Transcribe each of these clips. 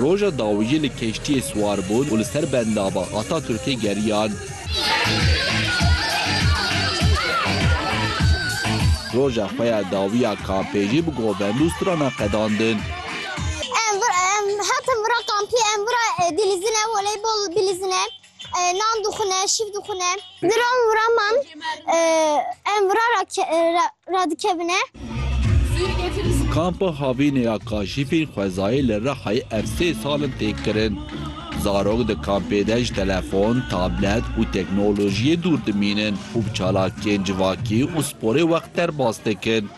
Roja dawiyê li keştiyê siwar bûn û li ser bendava Ataturkê geriyan. Roja xwe ya dawî ya kampê jî bi govend û strana qedandin. Nan dixwine, şîv dixwine. Di ran û raman em vira radikevine. Kampa havînê ya kaşîfên xwezayê li Rihayê ev sê sal in tê kirin. Zarok di kampê de ji telefon, tablet û teknolojiyê dûr dimînin û bi çalakiyên civakî û sporê wext derbas dikin.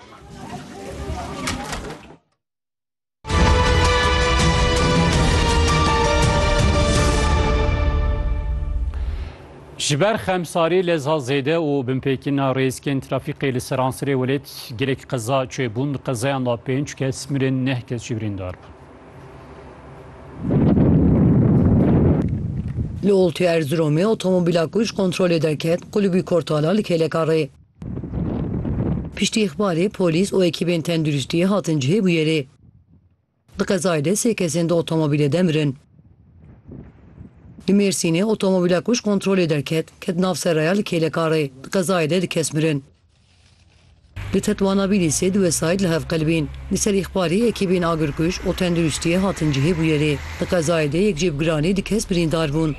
Ji ber xemsarî leza zêde û binpêkîna rêzkên trafîkê li seransirê welêt gelek qeza çêbûn. Di qezayan de pênc kes mirin, neh kes jî birîndar bûn. Li oltê Erziromê otomobîla ku ji kontrolê derket qulubî kortala li kêleka rê. Piştî îxbarê polîs û ekîbên tenduristiyê hatin cihê bûyerê. Di qezayê de sê kesên di otomobîlê de mirin. Li Mêrsînê otomobîla ku ji kontrolê derket, ket nav seraya li kêlekarê. Di qezayê de du kes mirin. Li Tetwana Bîlîsê du wesayît li hev qilibîn. Li ser îxbarî ekîbên agirkuj û tenduristiyê hatin cihê bûyerê. Di qezayê de yek jêbgiranî du kes birîndar bûn.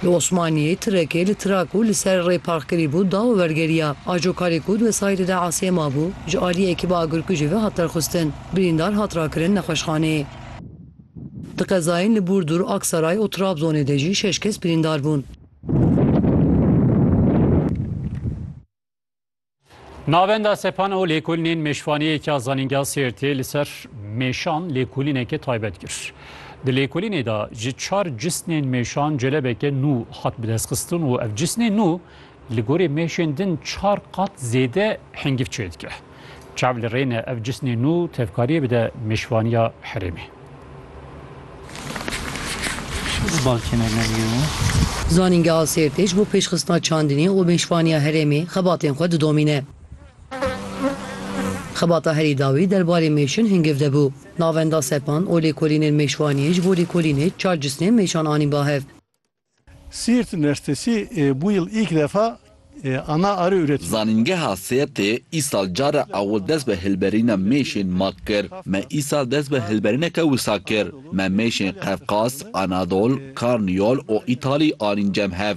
Li Osmaniyê tirekê li tira ku li ser rê park kirîbû da û wergeriya. Ajo karê ku di wesayîtê de asiyê mabû, ji aliyê ekîba agirkujê ve hat derxistin. Birîndar hat rakirin nexweşxaneyê. Di qezayên li Burdur, Aksaray û Trabzonê de jî şeş kes birîndar bûn. Navenda sepan û lêkolînên mêşvaniyek ya Zanîngeha Sêrtê li ser mêşan lêkolîneke taybet kir. Di lêkolînê de ji çar cisnên mêşan celebeke nû hat bidestxistin û ev cisnê nû li gorî mêşên din çar qat zêde hingîv çêdike. Çav li rê ne ev cisnê nû tevkariyê bide mêşvaniya herêmê. Zanîngeha Sêrtê ji bo pêşxistina çandinê û mêşvaniya herêmê xebatên xwe didomîne. Xebata herî dawî derbarê mêşin hingiv de bû. Navenda sepan û lêkolînên mêşvaniyê ji bo lêkolînê çar cisnên mêşan anîn ba hev. Siirt Üniversitesi bu yıl ilk defa ana arı üretiyor. Zanîngeha Sêrtê îsal care ewil dest bi hilberîna mêşên mak kir. Me îsal dest bi hilberîneke wisa kir. Me mêşên Qefqas, Anadol, Karniyol û Îtalî anîn cem hev.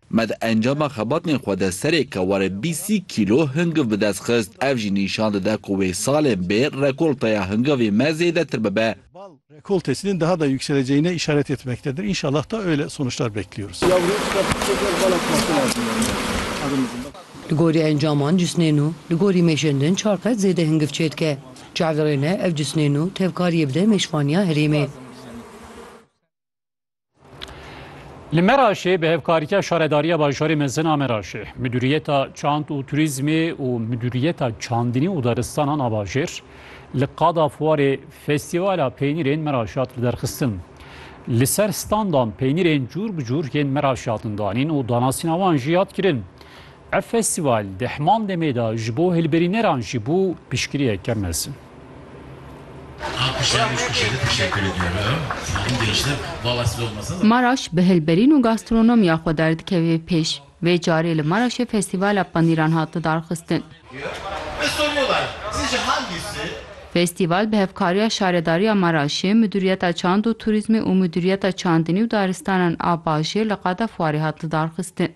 Me di encama xebatên xwe de serêka warê bîst sî kîlo hingiv bi dest xist. Ev jî nîşan dide ku wê salên bê rekolteya hingivê me zêdetir bibe. Bal rekoltesinin daha da yükseleceğine işaret etmektedir. İnşallah da öyle sonuçlar bekliyoruz. Li gorî encaman cisnên nû li gorî mêşên din çar qat zêde hingiv çêdike. Ji hev re ne ev cisnên nû tevkariyê bide mêşvaniya herêmê. Li Meraşê bi hevkariya Şaredariya Bajarê Mezin a Meraşê, Midûriyeta Çand û Turîzmê û Midûriyeta Çandinî û Daristanan a Bajêr li qada fuarê Festîvala Peynîrên Meraşê hat liderxistin. Li ser standan peynîrên cûr bi cûr yên Meraşê hatin danîn û danasîna wan jî hat kirin. Ev festîval di heman demê de ji bo hilberîneran jî bû piştgiriyeke mezin. Maraş bi hilberîn û gastronomiya xwe derdikeve pêş. Vê carê li Maraşê Festîvala Panîran hat lidarxistin. Festîval bi hevkariya Şaredariya Maraşê, Midûriyeta Çand û Turîzmê û Midûriyeta Çandinî û Daristanan a Bajêr li Qada Fuarê hat lidarxistin.